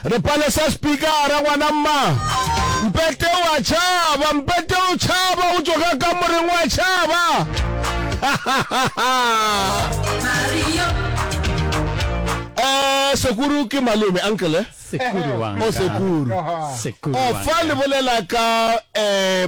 re palesa spikara ngwana mma mpete wa tšhaba mpete o tšhaba o tsoga ka moreng wa tšhaba eh sekuru ke malome uncle eh? sekuru wa o oh, sekuru sekuru o oh, fa le bolela ka eh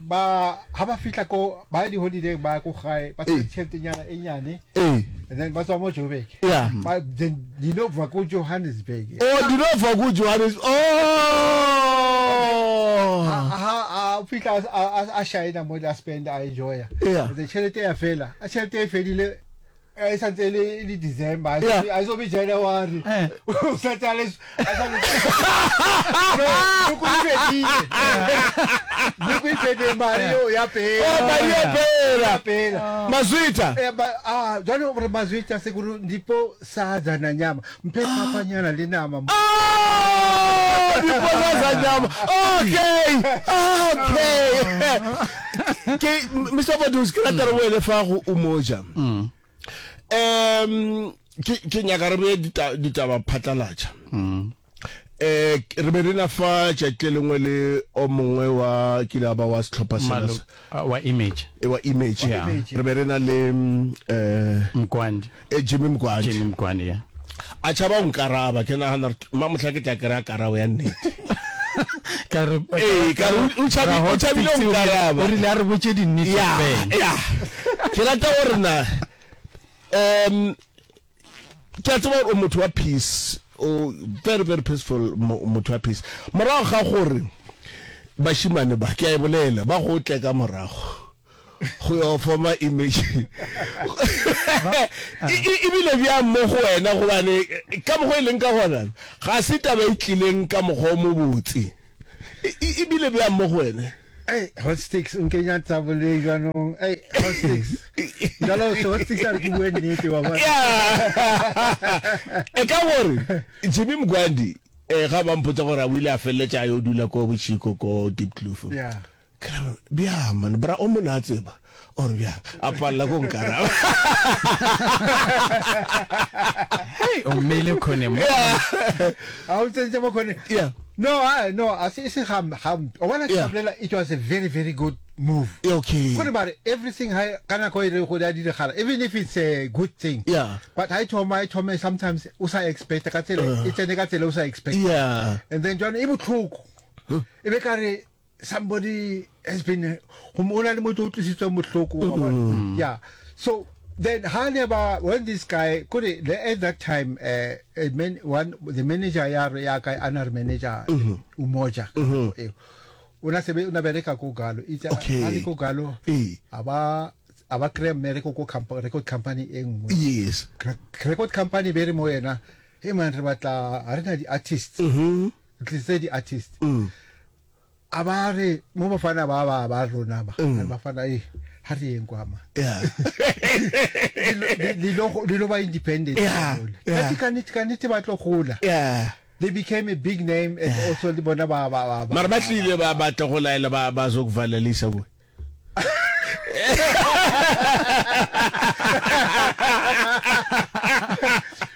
Ba, ha ba fihla ko, ba ya diholideng, ba ya ko gae, ba tshwere tšheletenyana e nyane, and then ba tswa mo Joburg. Yeah. Ba, then di no bva ko Johannesburg. Oh, di no bva ko Johannesburg. Oh! Ha, ha, a fihla a, a, a, a shaena mo le a spenda, a enjoya. Yeah. And then tšhelete ya fela, a tšhelete e fedile, Eh, e sa ntse e le e le december a e Yeah. so- a e so be january Eh. o sa tse a le a sa le noko e fedile noko e fedile mare eo ya pele Oh, mari ya pela ya pela mazwita Eh, ba- ah, jwale gore mazwetša sekore ndipo sa jana nyama Mphe phapanyana le nama mo. Oh, dipotsa za nyama. Okay. Okay. Ke Mr. Badus ke ratela mm. wele fa go umoja. Mm. Um ke ke nyaka re be ditaba phatlalatša. Mm. Eh re be rena fa tšatši lengwe le o mongwe wa ke la ba wa setlhopha sena wa image. E wa image. Re be rena le eh Mkwandi. e jimmy mkwadi jimmy mkwadi ya a tšhaba o nkaraba ke nagana gore ma mohla ke tla kry a karabo ya nnete ka re Ee, ka re o- o tšhabi- Raho o tšhabile o Pitsi o rile- nkaraba. o rile a re botše dinnete ya fela. ya ke rata gore na um ke a tseba gore o motho wa peace o very very peaceful mo- motho wa peace morago ga gore bashimane ba ke a e bolela ba go tle ka morago go your former image ebile bjang mo go wena gobane ka mokgwa e leng ka gona ga se taba e tlileng ka mokgwa o mo botse ebile bjang mo go wena Hey, hot sticks, un kenya tabole jwanong. Hey, hot sticks. Jalo se hot sticks are ke bue nnete wa bona. E ka gore Jimmy Mgwandi eh ga ba mpotsa gore a wile a felletša yo dula ko Bochiko ko Deep Kloof. Yeah. Ka re, Bjang man, bra o mona a tseba, or bjang? A palela go nkaraba. Hei, o mmeile khone mo. Ha o tsentse mo khone. Yeah. No, ha, no, a se, se ga, ga, o bona ke bolela, it was a very, very good move. Yeah, okay. Gore ba re, everything ha, ka nako e re go ya diragala, even if it's a good thing. Yeah. But ha e thoma, e thome sometimes, o sa expect, ka tsela, e tsene ka tsela o sa expect. Yeah. And then, jwale, e botlhoko. E be ka re, somebody has been go mo na le motho o tlisitswe mohloko wa bona mm-hmm. yeah so then ha ne ba when this guy could it, at that time uh, a man, one the manager ya re ya ka ana re manager mm-hmm. o moja mm-hmm. e o na sebe o na bereka go galo itse a le go galo aba aba kre mere go go company record company e nngwe yes record company be re mo yena e man re batla ha re na di artists mm-hmm. Ntlisedi artist a ba re mo bafana ba ba ba rona ba re bafana eh ha re yeng kwa ma di lo ba independent ka di ka nit ka nit ba tlo gola they became a big name and also le bona ba ba ba mara ba tlile ba batla go laela ba ba zo kuvalela isa bo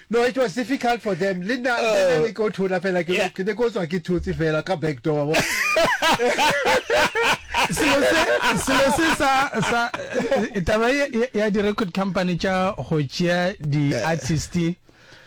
no it was difficult for them le nna oh. ne ko thola fela ke ne ko tswa ke thotse fela ka back door wa selo se sa sa taba ya di record company tša go tšea di artist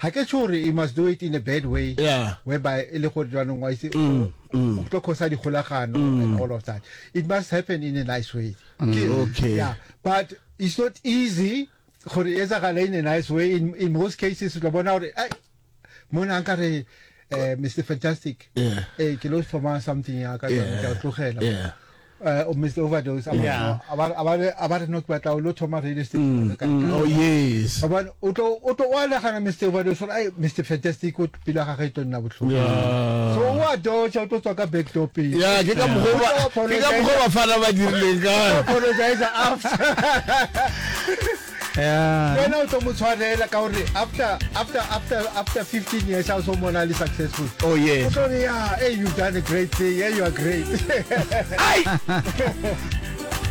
Ga ke tšho gore you must do it in a bad way whereby e le gore jwanong wa itse o tlo khosa dikgolagano and all of that. It must happen in a nice way. Okay. Yeah, but it's not easy gore e etsagale in a nice way. In, in most cases o tla bona gore ai mona nkare eh Mr Fantastic yeah. eh ke lo thoma something ya ka yeah. ke tlogela yeah. uh, oh, Mr Overdose yeah. a ba re no ke batla lo thoma radio station mm, mm, oh yes ba o tlo o tlo wa nagana Mr Overdose ai Mr Fantastic o pila ga ga ito nna botlhoko yeah. so wa do cha o tlo tswa ka back door pe yeah ke ka mogoba ke ka mogoba fana ba dirileng ka apologize after Yeah. Ke wena o tlo mo tshwarela ka gore after after after after 15 years ha o so mona le successful. Oh yes. O tlo re yeah, hey you've done a great thing. Hey you are great. Ai!